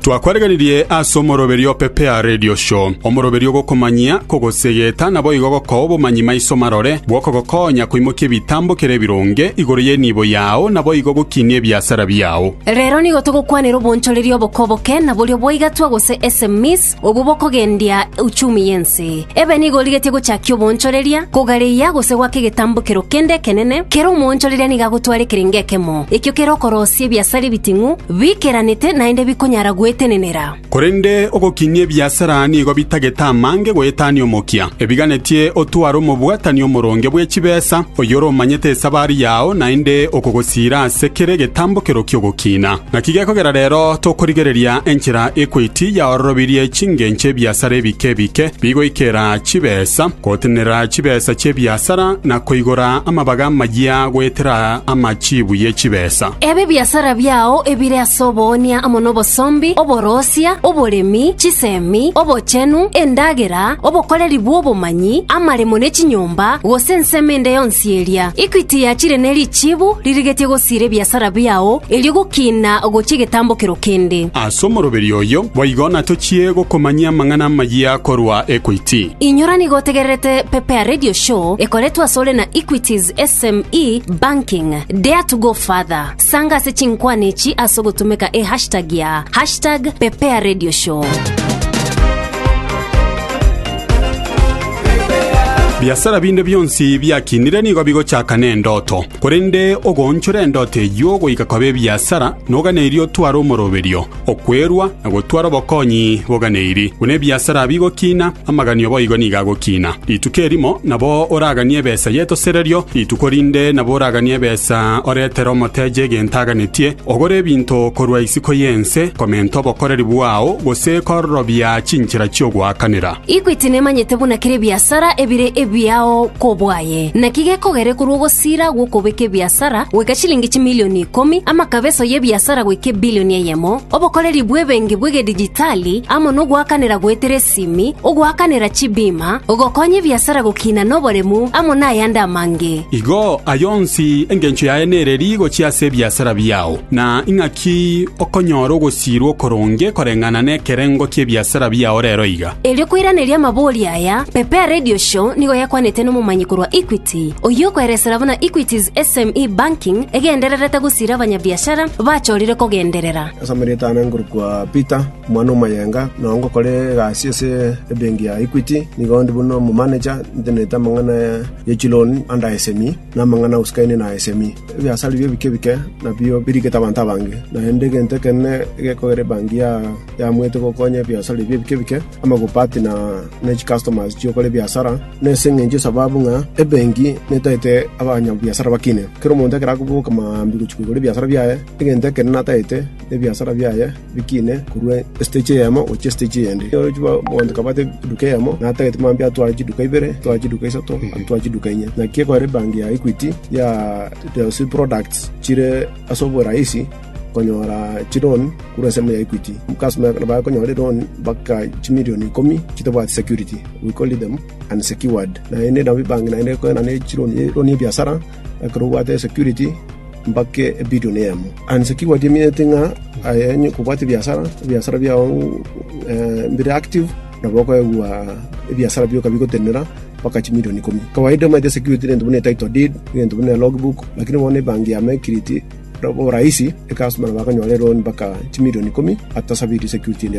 Twakweregeririe ase omoroberio o Pepea Radio Show, omoroberio ogokomanyia, kogosegeta, na boigo gokoa obomanyi maiso marore bw'okogokonya koimokia ebitambokero ebironge igoro y'enibo yao na boigo gokinia ebiasara biao. Rero nigo togokwanera obonchoreria oboke oboke, na boria bwaigatwa gose SMEs, obwo bokogendia uchumi y'ense. Ebe nigo origetie gochakia oboonchoreria, kogareia, gose goaka egetambokero kende ekenene, kera omoonchoreria nigo agotwara ekerenge ekemo, ekio kere okorosia ebiasara ebiting'u, bikeranete, naende bikonyara gwetenenera. Korende ogokinia ebiasara nigo bitagete amange goetania omokia. Ebiganetie otware omobwatani omoronge bwe chibesa, oyore omanyete esabari yao, naende okogosiira ase kera egetambokero ki'ogokiina. Naki gekogera rero tokorigereria enchera ekwaiti yaororobirie chingencho ebiasara ebike ebike bigoikera chibesa, gotenenera chibesa chi'ebiasara, na koigora amabaga amayia goetera amachiibu ye chibesa. Ebe ebiasara biao ebire ase oboonia amo nobosombi, oboroosia, oboremi, chisemi, obochenu, endagera, obokoreri bw'obomanyi, amaremo ne chinyomba, gose ensemo ende yonsi, Sieria. Equity yachire ne richibu ririgetie gosiira ebiasara biao, erio gokina gochia egetambokero kende. Ase omoroberio oyo boigo natochie gokomanyia amang'ana amayia korwa Equity. Inyora nigo otegererete Pepea Radio Show ekoretwe asore na Equity's SME Banking, Dare to go further. Sanga ase chinkwana echi ase ogotumeka e hashtag ya #PepeaRadioShow. Biasara binde bionsi biakinire nigo bigochaka nendoto. Korende ogoonchora endoto eyio goika koba ebiasara, noga nerio otware omoroberio. Okwerua na gotwara obokonyi boganeiri, buna ebiasara bigokina, amaganio boigo nigo agokina. Rituko erimo nabo oraganie ebesa y'etosererio, rituko rinde nabo oraganie ebesa oretere omoteche egento aganetie, ogore ebinto korwa isiko y'ense, komenta obokoreri bwao, gose kororobia chinchera chi'ogoakanera. Equity nemanyete buna kera ebiasara ebire ebiao kobwaye, naki gekogere korwa ogosira gw'okobeka ebiasara goika chilingi chimilioni ikomi, amakabe enso y'ebiasara goika ebilioni eyemo, obokoreri bw'ebenki bw'egedijitali amo nogoakanera goetera esimi, ogoakanera chibima, gokonya ebiasara gokina noboremu, amo nayande amange. Igo, aya onsi engencho yaye nere rigochi ase ebiasara biao. Na ing'aki okonyora ogosiirwa okoronge koreng'ana nekerengo ki'ebiasara biao rero iga? Erio koiraneria amabori aya, Pepea Radio Show nigo yakwanete nomomanyi korwa Equity, oyio okoeresera buna Equity's SME Banking egendererete gosiira abanyabiashara bachorire kogenderera. Ase amareeta ane nkorokwa Peter omwana o Mayenga, nao ngokora egasi ase ebenki ya Equity. Nigo ndi buna omo manager, ntenenete amang'ana ye chiloni under SME. Namang'ana agosikanie na esemi. Ebiasare bie ebike ebike nabio birigete abanto abange, naende egento ekenene egekogera ebanki yaamoete gokonya ebiasare bie ebike ebike, amagupa ati na chicustomers chi'okora ebiasara. Nase engencho y'esababu ng'a ebenki netaete abanyabiasara bakine, kera omonto ekero akoboka maambia gochia koigora ebiasara biaye, egento ekenene ataete nebiasara biaye. Bikine korwa estage eyemo gochia estage eyende. Orochie bagoancha kabate eduka eyemo, na atagete mambia atware chiduka ibere, atware chiduka isato, atware chiduka inye. Naki ekorera ebanki ya Equity ya those products chire ase oborahisi konyora chiloan korwa ensemo ya Equity. Customer ekero bakonyora eloan mpaka chimilion ikomi chitabwati security, we call them unsecured. Naende nabo ebanki naende ekoena nechiloan, eloan ya ebiasara, ekero obwate esecurity mpaka ebilion eyemo. And naki gwatiemiete ng'a aye onye kobwate ebiasara, ebiasara biao mbire active, nabo okoegwa ebiasara bioka bigotenena mpaka chimilion ikomi. Kawaida omanyete esecurity nento buna etitle deed, egento buna elogbook, lakini bono ebanki yamo ekiriti, borahisi, ekastomer nabo akonyora eloan mpaka chimilion ikomi atasabeti security ende.